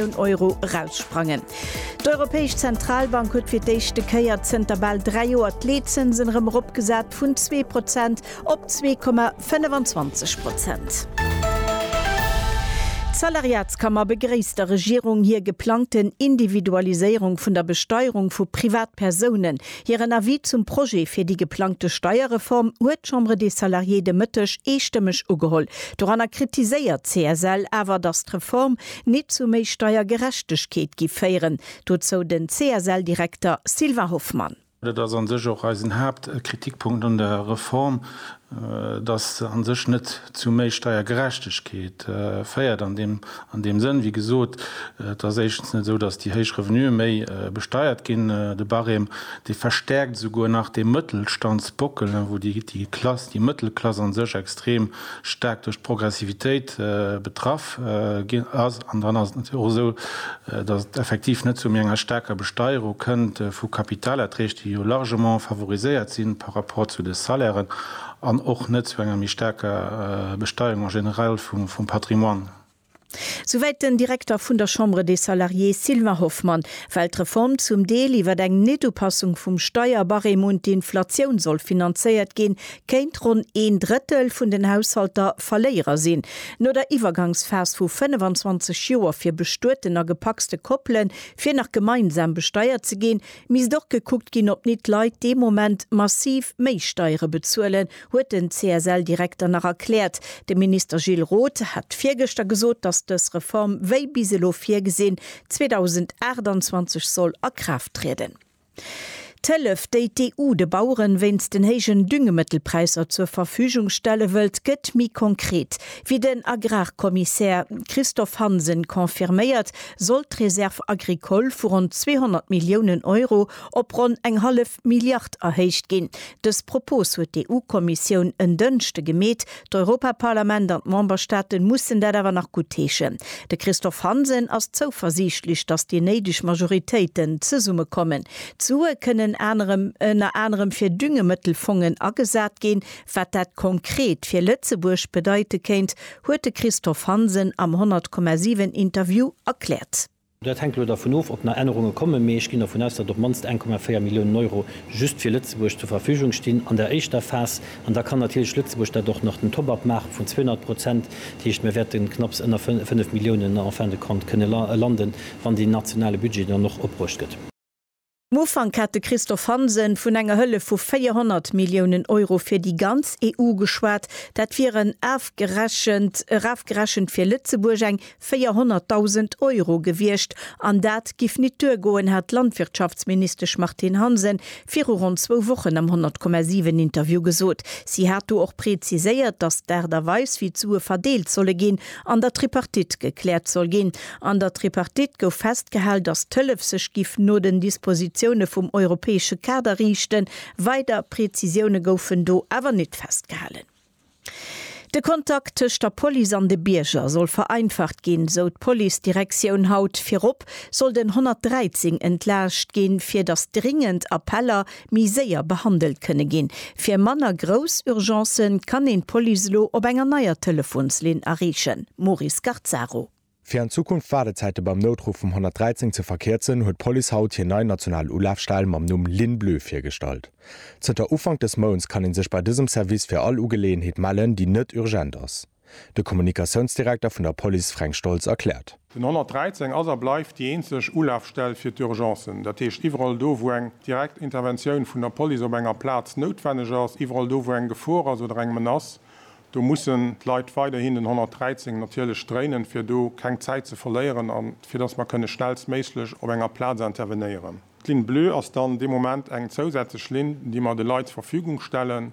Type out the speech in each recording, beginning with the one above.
Millioun Euro eraussprangen. D'Europäesch Zentralbank huet fir d'éischte Kéier zënter bal dräi Joer d'Leetzënsen erëm eropgesat, vun zwee Prozent op zwee Komma 25 Prozent. D'Salariatskammer begréisst der Regierung hir geplangten Individualiséierung vun der Besteierung vu Privatpersounen. Hiren Avis zum Projet fir déi geplangte Steierreform huet d'Chambre des Salariés de Mëtteg eestëmmeg ugeholl. Doranner kritiséiert d'CSL awer, datt d'Reform Nit zu méi Steiergerechtegkeet gi féieren, dozou den CSL-Direkter Sylvain Hoffmann. Dat ass a sech och eisen Haaptkritikpunkt un der Reform, dass se a sech net zu méi Steiergerechtegkeet féiert an deem Sënn, wéi gesot, et ass éischtens net esou, dass déi héich Revenuë méi besteiert ginn, de Barème, dee verstärkt esouguer nach dee Mëttelstandsbockel, wou déi Klass, déi Mëttelklass a sech extrem staark duerch d'Progressivitéit betraff ginn ass. An dann ass et natierlech och esou, datt et effektiv net zu méi enger staarker Besteierung kënnt vu Kapitalerträg, déi jo largement favoriséiert si par rapport zu de Salairen, an och net zu enger méi staarker Besteierung en général vum Patrimoine. Souwäit den Direkter vun der Chambre des Salariés Sylvain Hoffmann. Well d'Reform zum Deel iwwer eng Netupassung vum Steierbarème un d'Inflatioun soll finanzéiert ginn, kéint ronn een Drëttel vun den Haushalter Verléierer sinn. No der Iwwergangsphas vu 25 Joer fir bestueten a gepacste Koppele fir nach gemeinsam besteiert ze ginn, misst och gekuckt ginn, ob nit d'Leit dee Moment massiv méi Steiere bezuelen, huet den CSL-Direkter nach erkläert. De Minister Gilles Roth hat virgëschter gesot, datt dës Reform, wéi bis elo virgesinn, 2028 soll a Kraaft trieden. D'Hëllef, déi d'EU de Baueren wéinst den héijen Düngemëttelpräisser zur Verfügung stelle wëllt, gëtt méi konkret. Wéi den Agrarkommissär Christophe Hansen confirméiert, soll d'Réserve agricole vu ronn 200 Milliounen Euro op ronn eng hallef. Milliard erhéicht ginn. Dës Propos huet d'EU-Kommissioun en Dënschde gemeet. D'Europaparlament an d'Memberstaaten mussen dat awer nach guttheeschen. De Christophe Hansen ass zouversiichtlech, datt déi néideg Majoritéiten zesummekommen. D'Sue kënnen ënner anerem fir Düngemëttelfongen agesat ginn. Wat dat konkret fir Lëtzebuerg bedeite kéint, huet de Christophe Hansen am 100,7 Interview erkläert. Dat hänkt elo dervun of, ob nach Ännerunge kommen, mee ech ginn dervun aus, datt op d'mannst 1,4 Milliounen Euro just fir Lëtzebuerg zur Verfügung stinn an der éischter Phas. An da kann natierlech Lëtzebuerg dat och nach den Top-up maache vun 200 Prozent. Dat heescht, mir wäerte knapps ënner 5 Milliounen en fin de compte kënne landen, wann deen nationale Budget dann och opbruecht gëtt. Am Ufank hat de Christophe Hansen vun enger Hëllef vu 400 Milliounen Euro fir déi ganz EU geschwat. Dat wieren afgerechent, erafgerechent fir Lëtzebuerg, eng 400.000 Euro gewiescht. An dat giff nit duergoen, hat d'Landwirtschaftsministesch Martine Hansen viru ronn zwou Wochen am 100,7 Interview gesot. Si hat do och preziséiert, datt d'Aart a Weis, wéi d'Sue verdeelt solle ginn, an der Tripartite gekläert soll ginn. An der Tripartite gouf festgehal, datt d'Hëllef sech giff no den Dispositioune vum europäesche Kader riichten. Weider Prezisioune goufen do awer nit festgehalen. De Kontakt tëscht der Police an de Bierger soll vereinfacht ginn, sou d'Policedirektioun haut. Virop soll den 113 entlaascht ginn, fir datt dringend Appeller méi séier behandelt kënne ginn. Fir manner grouss Urgencen kann een d'Police elo op enger neier Telefonslinn erreechen, Maury Scarzaro. Fir an Zukunft d'Waardezäite beim Noutruff vum 113 ze verkierzen, huet d'Police haut hir nei national Ulafstell mam Numm Ligne Bleue virgestallt. Zënter Ufank des Mounts kann ee sech bei dësem Service fir all Ugeleeënheet mellen, déi net urgent ass. De Kommunikatiounsdirekter vun der Police Fränk Stoltz erkläert. Den 113 ass a bleift déi eenzeg Ulafstell fir d'Urgencen. Dat heescht, iwwerall do, wou eng direkt Interventioun vun der Police op enger Plaz noutwenneg ass, iwwerall do, wou eng Gefor ass oder eng Menace, do mussen d'Leit weiderhin den 113 natierlech dréinen, fir do keng Zäit ze verléieren a fir dass mer kënne schnellstméiglech op enger Plaz intervenéieren. D'Ligne bleue ass dann dee Moment eng zousätzlech Linn, déi mer de Leit zur Verfügung stellen.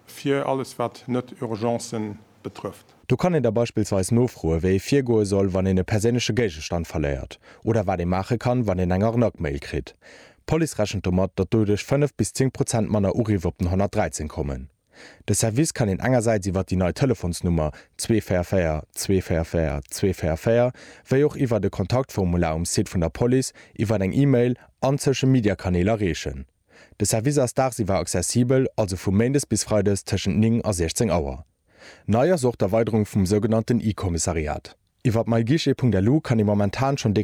Fir alles wat net Urgencen betrëfft. Do kann een da beispillsweis nofroe wéi ee virgoe soll wann een e perséinleche Géigestand verléiert, oder wat ee maache kann wann een eng Arnaque-Mail kritt. D'Police rechent domat, datt doduerch 5 bis 10 Prozent manner Uriff op den 113 kommen. De Service kann een engersäits iwwer déi nei Telefonsnummer 244 244 244, wéi och iwwert e Kontaktformular um Site vun der Police, iwwert eng E-Mail an d'Social-Media-Kanäl erreechen. De Service ass dagsiwwer accessibel, also vu méindes bis freides tëschent 9 a 16 Auer. Nei ass och d'Erweiderung vum sougenannten e-Kommissariat. Iwwer myguichet.lu kann ee momentan schonn déi.